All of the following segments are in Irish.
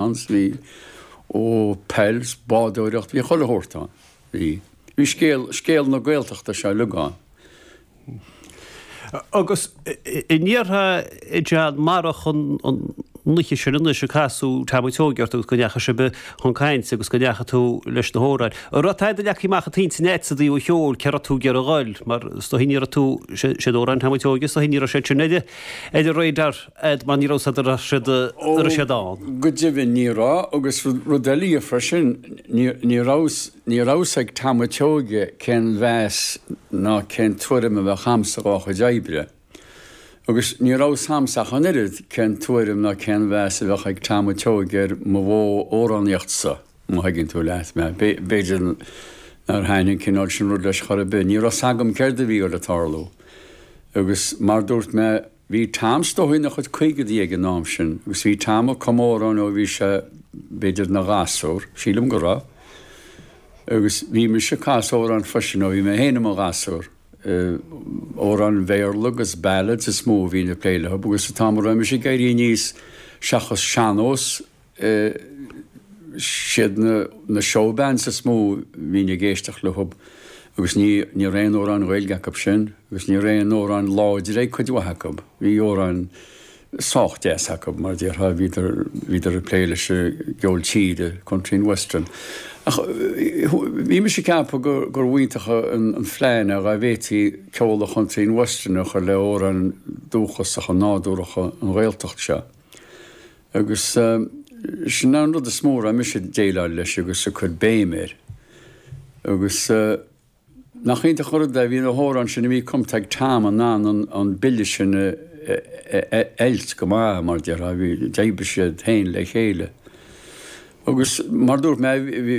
ann, bhí, ó, peil 's bádóireacht, bhí chuile shórt ann. Bhí. Bhí scéal, scéal na Gaeltachta seo uilig ann. Agus an ndéarfá, a John, marach an oíche sin anois ar casadh Tom a' tSeoighe ort agus go ndeachaigh sibh chun cainte agus go ndeachaigh tú leis na hamhráin. An raibh taighde leagtha amach i t'intinn a'd sa dtaobh an cheoil cé rachfá ag iarraidh a dhul mar is dóigh ní raibh tú, sé, sé, amhráin Tom a' tSeoighe is dóigh ní raibh siad sin ar, ar an radar a'd mar ní raibh siad ar siúl, an raibh siad ann. Go deimhin ní raibh agus rud eile freisin ní rabhas ag tam a tseoighe cén meas ná cén tuairim a bheadh a'msa dhá chuid oibre. Agus ní rabhas a'msa ach an oiread cén tuairim ná cén meas a bheadh ag tam a tseoighe ar mo mhodh amhránaíochta-sa, má thuigeann tú leat mé. B'fhéidir nach dtaithneodh an cineál sin rud leis chor a' bith. Ní raibh 's agam céard a bhí le tarlú. Agus mar dúirt mé. Bhí Tom a' tSeoighe ina chuid caogadaí ag an am sin agus bhí Tom ag cumadh amhrán ó bhí sé, b'fhéidir, ina ghasúr, sílim go raibh, agus bhí mise ag casadh amhrán freisin ó bhí mé féin i mo ghasúr. Amhráin Bhéarla agus ballads is mó a bhínn ag plé leothub agus sa t-am a raibh mise ag éirí aníos seachas sean-nós, siad na show bands is mó bhínn ag éisteacht leothub agus ní raibh aon amhráin Ghaeilge acub sin agus ní raibh aon amhráin láidir ag cuid mhaith acub. Bhí amhráin sách deas acub mar déarfá bhíodar bhíodar ag plé leis an gceol tíre, country and western. Ach bhí mise ag ceapadh gur gur mb'iontach an plean é dhá bhféadfaí ceol country and western a chur le amhráin dúchasacha nádúracha na Gaeltachta seo. Agus sin an rud is mó a raibh mise ag díriú leis agus ag cur béim air. Agus nach iontach an rud é, bhí na hamhráin sin a bhí cumtha ag Tom in ann an bille sin a fheiliúint go maith, mar a déarfá, d'oibrigh siad togha le chéile. Agus mar a dúirt mé,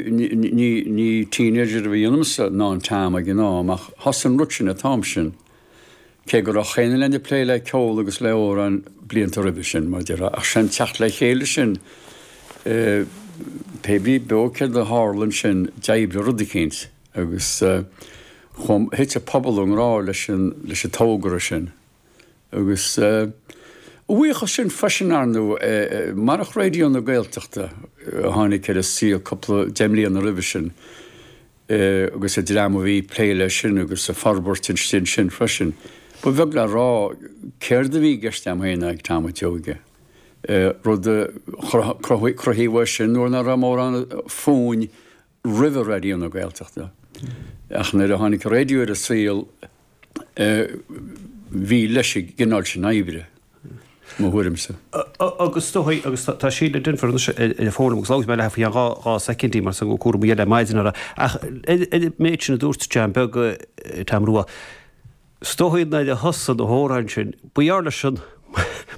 ní teenager a bhí ionamsa ná in Tom ag an am ach thosaigh an rud sin ag Tom sin. Cé go raibh chaon duine againn ag plé le ceol agus le amhráin blianta roimhe sin, mar déarfá, ach sé'n teacht le chéile sin, pé ar bith beo céard a tharla ansin, d'oibrigh rud eicínt agus chomh, thit an pobal i ngrá leis an, leis an togra sin. Agus a bhuíochas sin freisin ar ndú, marach Raidió na Gaeltachta a tháinig ar an saol, cúpla, deich mbliana roimhe sin, agus an dream a bhí ag plé leis sin agus ag forbairt an stíl sin freisin. Ba bheag le rá céard a bhí i gceist agam féin ná ag Tom a' tSeoighe, rud a chruthaigh é sin nuair nach raibh mórán fúinn roimhe Raidió na Gaeltachta. Ach nuair a tháinig an Raidió ar an saol, bhí leis an gcineál sin oibre, mo thuairimse. Agus is dóichí, agus tá Síle Denvir anois ar an bhfón liom, agus labhróidh mé léi faoi cheann dhá soicind, mar tá cúram eile ar maidin uirthi. Ach ar an méid sin a dúirt John Beag, Tom Rua, is dóichí nuair a thosaigh na hamhráin sin, ba gheall leis an.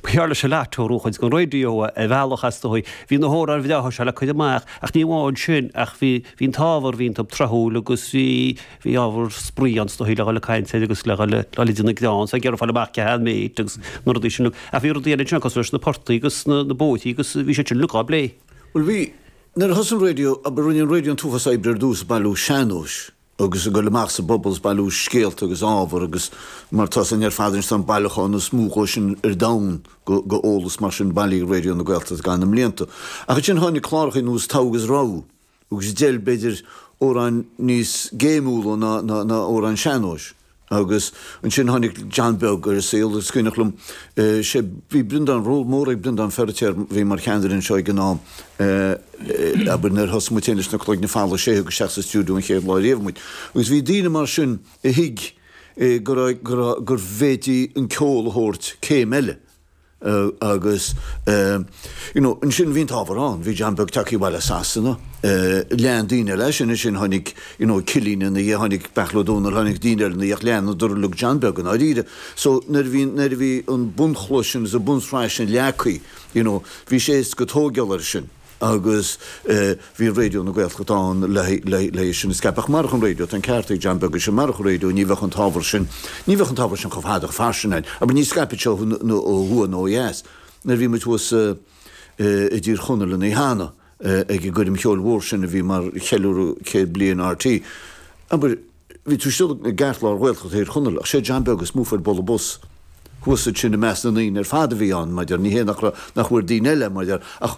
Ba gheall leis an lottery do chuid den raidió ar bhealach is dóigh. Bhí na hamhráin bhreátha seo le cur amach ach ní amháin sin ach bhí bhí an t-ábhar, bhí an t-am tráthúil agus bhí bhí ábhar spraoi ann is dóigh le dhul ag caint air agus le dhul le dhul idir na greann so ag iarraidh fáil amach cé h-aon méid agus na rudaí sin. Ach bhí rudaí eile ansin cosúil leis na portaigh agus na na bóithrí agus bhí siad sin uilig á bplé. Bhuel bhí, nuair a thosaigh an raidió, a rinne an raidió an t-uafás oibre ar dtús ag bailiú sean-nóis, agus ag dul amach sa bpobal is ag bailiú scéalta agus ábhar agus mar atá a fhios againn ar fad anois tá an bailiúchán is mó dhó sin ar domhan go go eolas mar sin bailithe ag Raidió na Gaeltachta i gcaitheamh na mblianta ach ansin tháinig cláracha nós Togha is Rogha agus d'fheil b'fhéidir amhráin níos géimiúla ná ná amhráin sean-nóis Agus ansin tháinig John Beag ar an saol. Is cuimhneach liom, sé, bhí Breandán, ról mór ag Breandán Feiritéar, bhí mar cheannaire anseo ag an am, abair nuair a thosaigh muid féin leis na Cloigne Folmha, sé a thug isteach sa stiúideo an chéad lá riamh muid. Agus bhí daoine mar sin a thuig go raibh, go raibh, go bhféadfaí an ceol a thabhairt céim eile. Eh agus eh you know ansin bhí an t-ábhar ann, bhí John Beag tagtha abhaile as Sasana, eh lean daoine eile sin, ansin tháinig you know Cillín ina dhiaidh, tháinig Beartla Ó Domhnaill, tháinig daoine eile ina dhiaidh, leanadar lorg John Beag i ndáiríre. So nuair a bhí, nuair a bhí an bunchloch sin, an bhunshraith sin leagtha, you know bhí sé éasca tógáil air sin. agus bhí Raidió na Gaeltachta ann le haghaidh sin a scaipeadh. Ach marach an raidió, tá an ceart ag John Beag, is é, marach an raidió ní bheadh an t-ábhar sin, ní bheadh an t-ábhar sin chomh fada, chomh fairsing ann, abair ní scaipfeadh sé ó thuaidh nó ó dheas nuair a bhí muid thuas i dTír Chonaill an lá cheana ag an gcoirm cheoil mhór sin a bhí mar cheiliúradh céad bliain RTÉ, abair. Bhí tú istigh i gceartlár Ghaeltacht Thír Chonaill ach sé John Beag is mó a fuair bualadh bos thuas ansin i measc na ndaoine ar fad a bhí ann, abair ní hé nach, nach bhfuair daoine eile abair ach